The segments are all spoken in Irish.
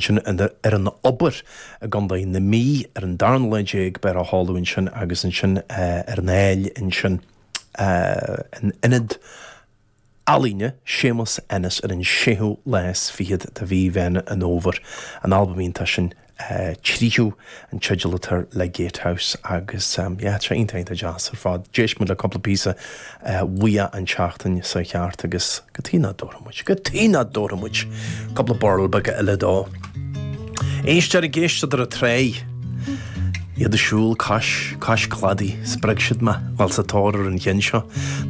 sin ar an Obair i gContae na Mí ar an darna lá déag, beidh á sheoladh ansin agus ansin ar an Aill ansin in Ionad Ealaíne Séamus Ennis ar an séú lá is fichead de mhí Mheán an Fhómhair, an albam iontach sin Tríú. an teideal atá air le Gatehouse agus yeah tá sé iontach iontach deas ar fad. D'éist muid le cúpla píosa uaidh an tseachtain seo thart agus cad tuige nach dtabharfadh muid, cad tuige nach dtabharfadh muid cúpla birl beaga eile dó. Éisteoir ag éisteacht ar an trá, iad ag siúl cois, cois cladaigh, spreag siad mé, bhuel sa tóir ar an cheann seo,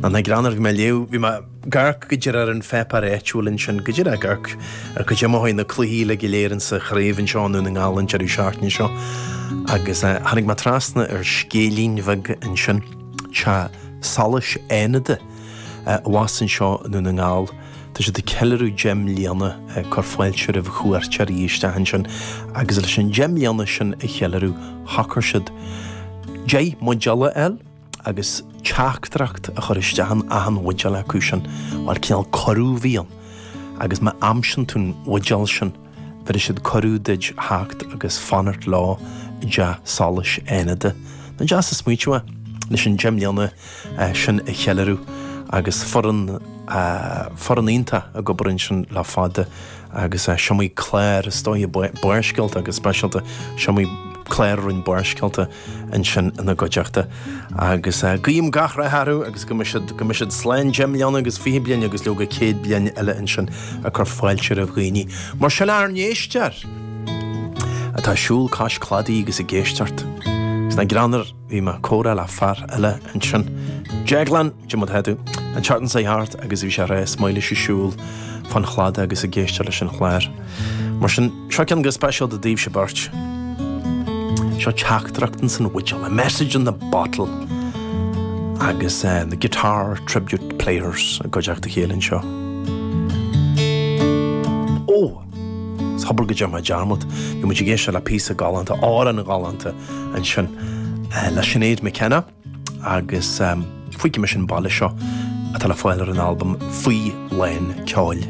nach ag rá nuair a bhí mé ag léamh, bhí mé, ag amharc go díreach ar an pháipéar áitiúil ansin, go díreach ag amharc cad é mar a chuaigh na cluichí uilig go léir insa chraobh anseo i nDún na nGall an deireadh seachtaine seo agus tháinig mé trasna ar scéilín bheag ansin, Teach Solais Fhánada, abhus anseo i nDún na nGall, tá siad ag ceiliúradh deich mbliana ag cur fáilte roimh chuairteoirí isteach ansin agus leis an deich mbliana sin a cheiliúradh, shocair siad deich mbuidéal a fháil. agus teachtaireacht a chur isteach in achan bhuidéal acu sin, mar cineál cuireadh a bhí ann, agus má aimsíonn tú an bhuidéal sin, bhéarfaidh siad cuireadh duid a theacht agus fanacht leo i dteach solais Fhánada. Nach deas an smaointiú é, leis an deich mbliana sin a cheiliúradh, agus foireann, foireann iontach ag obair ansin le fada, agus is iomaí clár, is dóigh, Barrscéalta go speisialta, is iomaí clár a rinn Barrscéalta, ansin ina gcuideachta agus guím gach rath orthu agus go mbeidh siad slán deich mbliana agus fiche bliain agus leoga céad bliain eile ansin ag cur fáilte roimh dhaoine mar sin ár n-éisteoir atá ag siúl cois cladaigh agus ag éisteacht. Is nach greannmhar bhí mé ag comhrá le fear eile ansin, Deaglán, cad é mar atá tú, an tseachtain seo thart agus bhí sé ag rá is maith leis ag siúl fán chladach agus ag éisteacht leis an chlár. Mar sin. Seo ceann go speisialta daoibhse beirt. Seo teachtaireachtan san bhuidéal, a message in the bottle, agus The Guitar Tribute Players i gcuideachta a chéile anseo. Ó! Is hobair go dtearn mé dearmad, bhí muid ag éisteacht le píosa galánta, álainn ghalánta ansin le Sinéad McKenna agus Fuígfidh Mise an Baile Seo atá le fáil ar an albam Faoi Lán Ceoil.